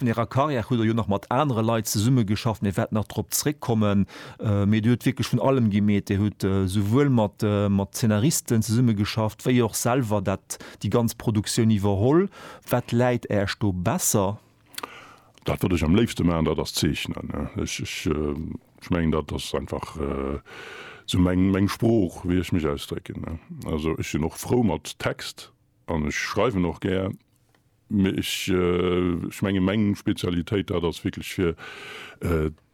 An Ärer Karriär hutt Der jo nach mat anere Leit zesummegeschafft, mir wäerten nach drop zréckkommen, mee Dir hutt wierklech vun allem gemeet. Dir hutt souwuel mat Zeenaristen zesummegeschafft, wéi och selwer dat, déi ganz Produktioun iwwerholl. Wat läit Äech do besser? Dat wat ech am léifste maachen, dat ass zeechnen. Ech mengen dat ass einfach sou meng Sprooch, wéi ech mech ausdrécken. Also ech sinn och frou mat Text an ech schreiwen och gär. Mee ech ech mengen meng Spezialitéit dat ass wierklech fir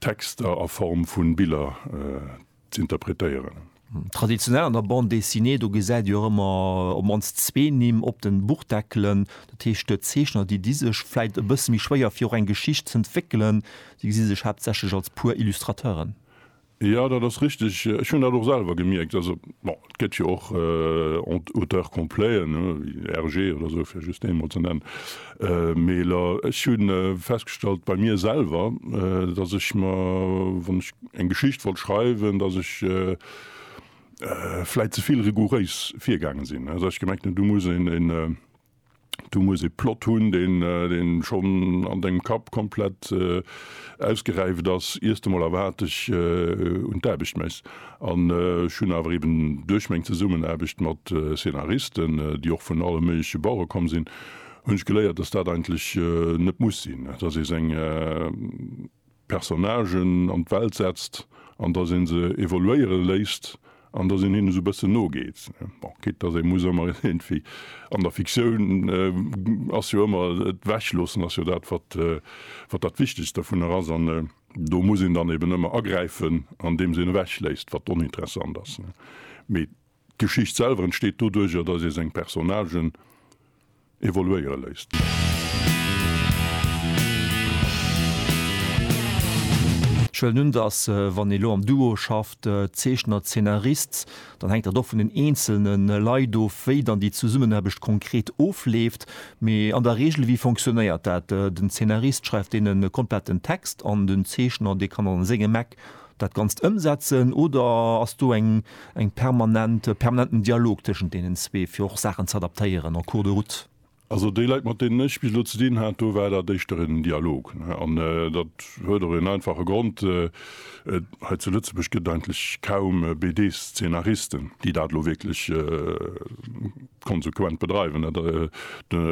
Texter a Form vun Biller z'interpretéieren. Traditionell an der Bande Dessinée do gesäit Dir och ëmmer op mannst zwee Nimm op den Buchdeckelen. Dat heescht Zeechner déi di sech vläit e bësse méi schwéier fir och eng Geschicht z'entwéckelen, déi gesi sech haaptsächlech als pur Illustrateuren? Jo, dat ass richteg. Ech hunn dat och selwer gemierkt. Also bon, et gëtt jo och Auteurs completen, RG oder esou, fir just ee mol ze nennen. Mee lo, ech hu festgestallt bei mir selwer, datt ech mer, wann ech eng Geschicht wollt schreiwen, datt ech vläit ze vill rigouréis virgaange sinn. Also ech gemengt hunn, do muss een Du muss e Plot hunn, deen, deen schonn an dengem Kapp komplett ausgeräift ass, iers de mol erwaarteg un d'Aarbecht méchs. An ech hunn awer eben duerch meng Zesummenaarbecht mat Szenaristen, déi och vun alle méigleche Bauere komm sinn, hunn ech geléiert, dass dat eigentlech net muss sinn, dass ee seng, Personnagen an d'Welt setzt an datt ee se evoluéiere léisst an datt een hinne sou e bëssen nogeet. Bon, quitte datt ee muss ëmmer iergendwéi, an der Fiktioun ass jo ëmmer, d'Ewechloossen ass jo dat, wat dat Wichtegst dovunner ass an do muss een dann eben ëmmer agräifen, andeems een ewechléisst, wat oninteressant ass. Mee D'Geschicht selwer entsteet doduerjer, datt ee seng Personnagen evoluéiere léisst. Ech huelen un, datt wann ee lo am Duo schafft, Zeechner, Zeenarist, dann hänkt dat och vun den eenzelne Leit of, wéi dann déi Zesummenaarbecht konkret ofleeft. Mee an der Regel, wéi fonctionnéiert dat? Den Zeenarist schreift deen e kompletten Text an den Zeechner, dee kann an sengem Eck dat Ganzt ëmsetzen oder ass do eng eng permanent permanenten Dialog tëschent deenen zwee, fir och Saachen ze adaptéieren en cours de route? Also déi Leit, mat deenen ech bis elo ze dinn hat, do war dat éischter en Dialog. An dat huet och en einfache Grond, Hei zu Lëtzebuerg gëtt et eigentlech kaum BD-Szenaristen, déi dat elo wierklech konsequent bedreiwen. Dat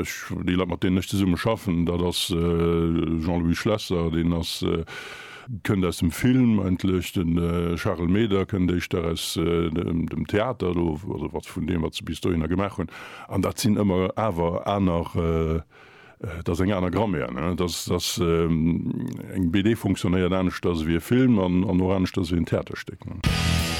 ech déi Leit mat deenen ech zesumme schaffen, dat ass Jean-Louis Schlesser, deen ass kënnt aus dem Film eigentlech, de Charel Meder kënnt éischter aus dem Theater do, also wat vun deem wat se bis dohinner gemaach hunn, an dat sinn ëmmer awer aner, dat ass eng aner Grammaire. Dat ass eng BD fonctionnéiert aneschters ewéi e Film an och aneschters ewéi en Theaterstéck.